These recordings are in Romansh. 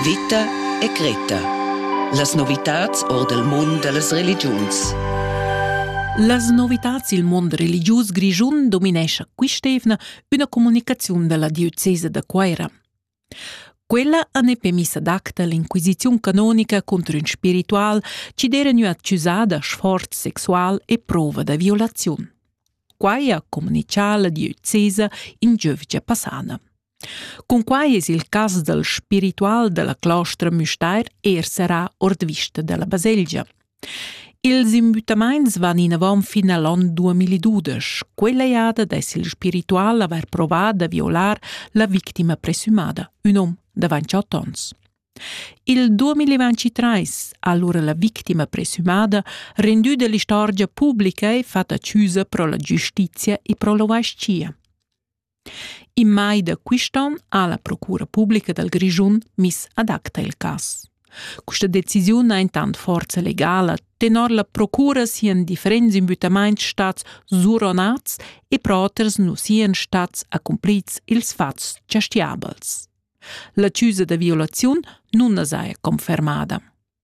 Vita e Greta. Las novitads or dal mund da las religiuns. Las novitads il mund religius grischun dominescha quist'evna üna comunicaziun da la diocesa da Cuaira. Quella ha ne permiss adacta l'inquisiziun canonica contro ün spiritual chi d'era gnü accusà da sforz sexual e prova da violaziun. Quai ha comunichà la diocesa in giövgia passana. Cunquai es il cas dal spiritual da la clostra Müstair eir serrà ord vista da la baselgia. Ils imbüttamaints van inavant fin a l'on 2012. Quella jada dess il spiritual avair provà da violar la victima presumada, ün hom davant 28 ons. Il 2023 ha allora la victima presumada rendü dell'istorgia pubblica e fatta accusa pro la giustizia e pro l'ovascia. In mai da quist'on ha la Procura publica dal Grischun miss ad acta il cas. Questa decisiun ha intant forza legala tenor la procura sian differents imbüttamaints stats suronats e pro oters nu sian stats accumplits ils fats giastiabels. La chiusa da violaziun nun as haja confermada.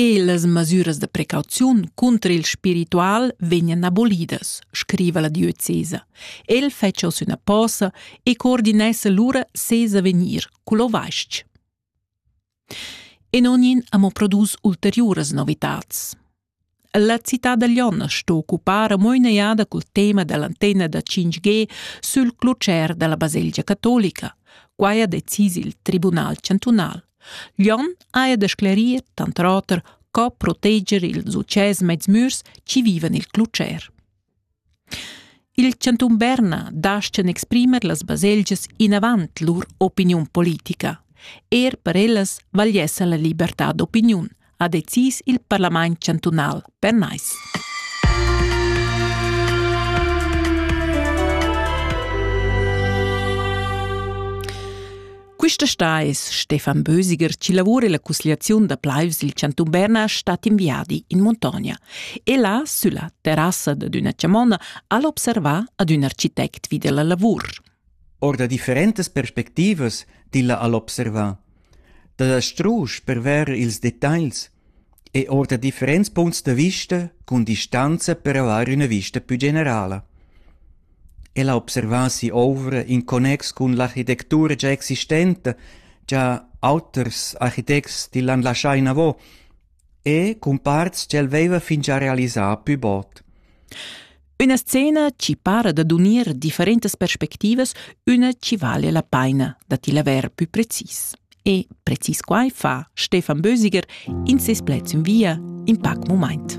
E las masüras da precauziun cunter il spiritual vegnan abolidas, scriva la diocesa. El fetscha oz üna posa e coordinessa lura ses avegnir cul ovais-ch. E non in amo produs ulteriuras novitats. La cità da Lion sto occupar mo in'egliada cul tema dall'antenna da 5G sul clutger dalla baselgia catolica. Quai ha decis il Tribunal chantunal. Lion haja da sclerir tant oter co proteger ils utschès mezmürs chi vivan il clutger. Il chantun Berna dastga exprimer las baselgias inavant lur opiniun politica. Er per ellas vagliessa la libertad d'opiniun, ha decis il parlament chantunal pernais. Quista sta es Stefan Bösiger chi lavura illa cusgliaziun da plaivs il chantun Berna stat in viadi in muntogna. E là, sülla terrassa dad üna chamonna, al observa ad ün architect vi della lavur. Or da differentas perspectivas tilla al observa. Da la strusch per ver ils detagls e ord differents punts da vista cun distanza per avair üna vista pü generala. El ha observà si'ouvra in connex cun l'architectura già existenta, già auters architects t'illan laschà inavo e cun parts ch'el veiva fingià realisà pü bod. Üna scena chi para dad unir differentas perspectivas, üna chi vale la paina da ti laver pü precis. E precis quai fa Stefan Bösiger in ses pleds in via in pac mumaint.